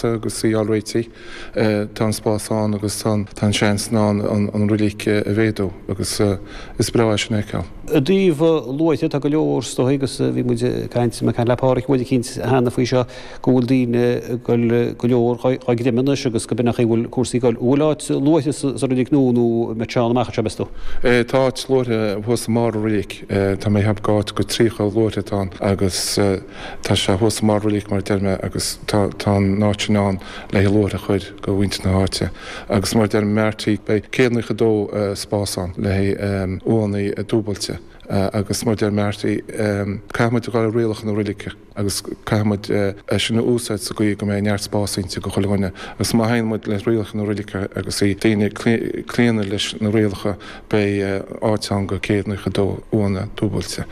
agus sí á réití. Tá an spás ann agus tá an seans ann an reilig a mhéadú agus is breá é sin a fheiceáil. I dtaobh luaithe, tá go leor is dóichí agus bhí muid ag caint, mé ag caint le Páraic uair eicínt cheana faoi seo, go bhfuil daoine ag goil go leor dhá gcréamadh anois agus go b'in é an chaoi a bhfuil cúrsaí ag goil. An bhfuil áit luaithe sa reilig nua nó an mbeidh sé ann amach anseo, meas tú? Tá áit luaithe thuas i mbarr an reilig. Tá mé ag ceapadh gur áit go 30 luaithe atá ann agus. Tá sé thuas i mbarr an reilig mar a deir mé agus tá tá an áit sin ann le haghaidh luaithre a chuir go mhuintir na háite agus mar a deir m'fhear tí beidh céad naocha dó spás ann le haghaidh uaigheannaí dúbailte agus mar a deir m'fhear tí caithfidh muid a ghoil le rialacha na reilige agus caithfidh muid é sin a úsaid sa gcaoi go mbeidh neart spás inti go chuile dhuine agus má theigheann muid le rialacha na reilige agus daoine ag claonadh leis na rialacha Beidh áit ann go céad naocha dó uaigheanna dúbailte.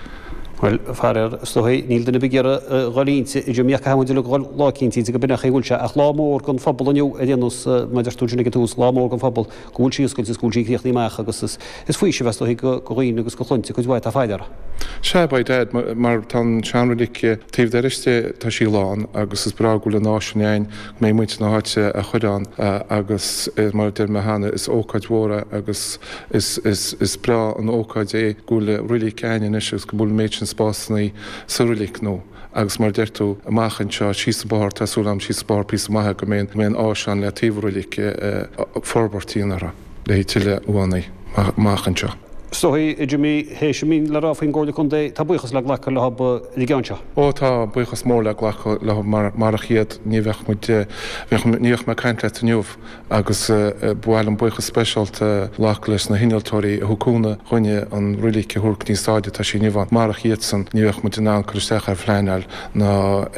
Bhuel, faraor, is dóigh, níl duine ar bith ag iarraidh a dhul inti, a Jimmy, ach caithfidh muid uilig a dhul lá eicínt inti go b'in é an chaoi a bhfuil sé, ach lá mór don phobal inniu ar aon nós, mar a deir tú ansin ag an tús, lá mór don phobal go bhfuil sí oscailte is go bhfuil sí críochnaithe amach agus is is faoiseamh, is dóigh, go dhaoine agus go chluinte cuid mhaith atá fáil uirthi. Sea, by dad, mar tá an seanreilig taobh dorais de, tá sí lán agus is breá go bhfuil an áis sin ann le muintir na háite a chuir ann agus mar a deir mé cheana is ócáid mhór é agus is breá an ócáid é go bhfuil reilig againn anois agus go bhfuil an méid sin spásanna sa reilig nua agus mar a deir tú amach anseo síos an bóthar tá súil agam síos an bóthar píosa maith go mbeidh an áis ann le taobh an reilig forbairt a dhéanamh uirthi. le haghaidh tuilleadh uaigheanna amach anseo. Is dóichí Jimmy théis a mbíonn le rá faoin gComhairle Contae, tá buíochas le glacadh leob faoin gceann seo. Ó tá buíochas mór le glacadh leob mar marach iad ní bheadh muid, bheadh, ní bheadh mé ag caint leat inniu agus ba mhaith liom buíochas speisialta a ghlacadh leis na hinnealtóirí a thug cúnamh dhúinn an reilig a thabhairt go dtí an stáid atá sí inniu ann. Marach iadsan ní bheadh muid in ann cur isteach ar phleanáil ná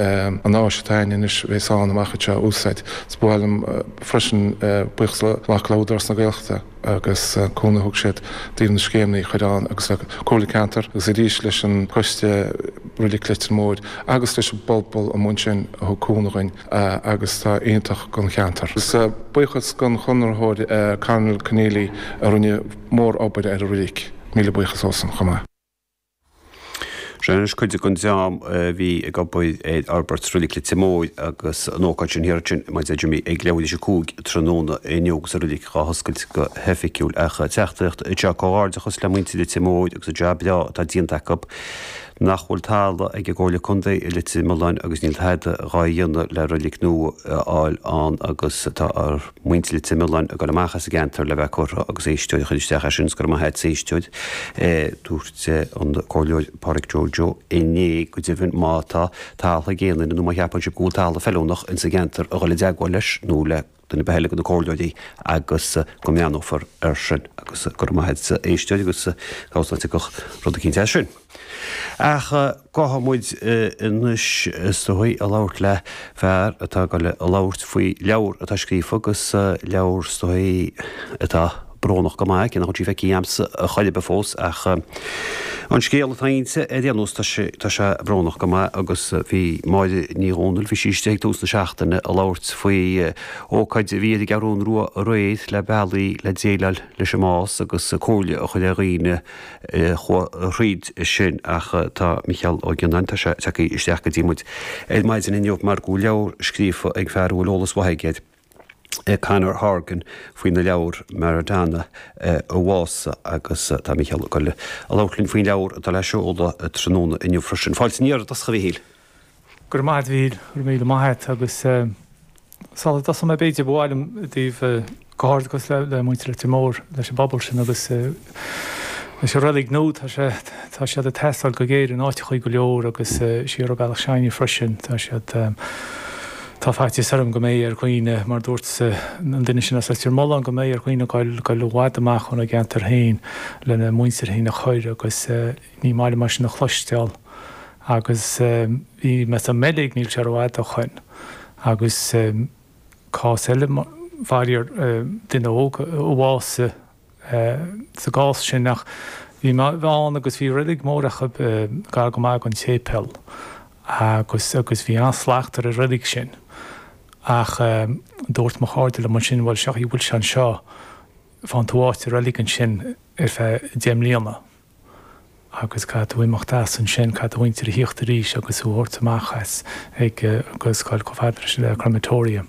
an áis atá ann anois bhéas ann amach anseo a úsáid. Is ba mhaith liom. freisin buíochas a ghlacadh le hÚdarás na Gaeltachta agus an cúnamh a thug siad i dtaobh na scéimeannaí a chuir ann agus le Comhairle Ceantar agus arís leis an Coiste Reilig Leitir Móir agus leis an bpobal amuigh ansin a thug cúnamh dhúinn agus atá iontach don cheantar. Is buíochas don Chonraitheoir Carmel Conneely a rinne mór obair ar an reilig. Míle buíochas dósan chomh maith. Seo anois cuid den dream a bhí ag obair ar fhorbairt Reilig Leitir Móir agus an ócáid sin thiar ansin, mar a dúirt Jimmy ag leathuair théis a cúig tráthnóna inniu agus an reilig dhá hoscailt go hoifigiúil ach an teachtaireacht anseo Comhghairdeachas le muintir Leitir Móir agus an job breá atá déanta acu. Nach bhfuil talamh ag an gComhairle Contae i Leitir Mealláin agus níl tada dhá dhéanamh le reilig nua a fháil ann agus tá muintir Leitir Mealláin ag dul amach as an gceantar le bheith curtha agus éisteoir a chuir isteach é sin, is go raibh maith agatsa a éisteoir. Dúirt an Comhairleoir Pádraig Joe Joe inné go deimhin má tá talamh ag aon duine nó má cheapann sibh go bhfuil talamh feiliúnach insa gceantar a dhul i dteagmháil leis nó le duine ar bith eile de na Comhairleoirí agus go mbreathnófar ar sin agus go raibh maith agatsa a éisteoir agus cá bhfios nach dtiocfadh rud eicínt as sin. Ach caithfimid anois is dóigh a labhairt le fear atá ag dul a labhairt faoi leabhar atá scríofa agus leabhar is dóigh atá brónach go maith, cé nach bhfuil sí feicthe agamsa a chor ar bith fós ach an scéal atá inti ar aon nós tá sé brónach go maith agus bhí Máire Ní Dhomhnaill, bhí sí istigh ag tús na seachtaine ag labhairt faoi ócáid a bhí ar an gCeathrún Rua aréir le bealaí le déileáil leis an mbás agus comhairle a chur ar dhaoine chuaigh thríd sin ach tá Micheál Ó Gionnáin, tá sé tagtha isteach go dtí muid ar maidin inniu mar go bhfuil leabhar scríofa ag fear a bhfuil eolas maith aige air, Conor Horgan, faoin leabhar Maradona a Mhása agus tá Micheál ag dul a labhairt linn faoin leabhar atá le seoladh tráthnóna inniu freisin. Fáilte aniar aduaidh isteach a Mhichíl. Go raibh maith agat Mhíl, go raibh míle maith agat agus sula dtosóidh mé b'fhéidir ba mhaith liom déanamh comhghairdeachas le muintir Leitir Móir leis an bpobal sin agus leis an reilig nua tá sé tá siad ag teastáil go géar in áiteachaí go leor agus siar an bealach s'againne freisin tá siad tá faitíos orm go mbeidh ar dhaoine mar dúirt an duine sin as Leitir Mealláin go mbeidh ar dhaoine goil goil i bhfad amach óna gceantar féin lena muintir féin a chur agus ní maith liomsa é sin a chloisteáil Agus bhí mé san mBeilg níl sé rófhada o shoin. Agus cás eile, fairíor, duine óg a bhásaigh sa gcás sin ach bhí mé ann agus bhí reilig mór acu gar go maith gon tséipéal agus agus bhí an-slacht ar an reilig sin. Ach dúirt mo chairde liom ansin bhuel sé an chaoi a bhfuil sé anseo, faigheann tú áit i reilig ansin ar feadh deich mbliana. agus caithfidh tú imeacht as ansin, caithfidh do mhuintir a thíocht arís agus thú a thabhairt amach as agus a ghoil chomh fada leis an crematorium.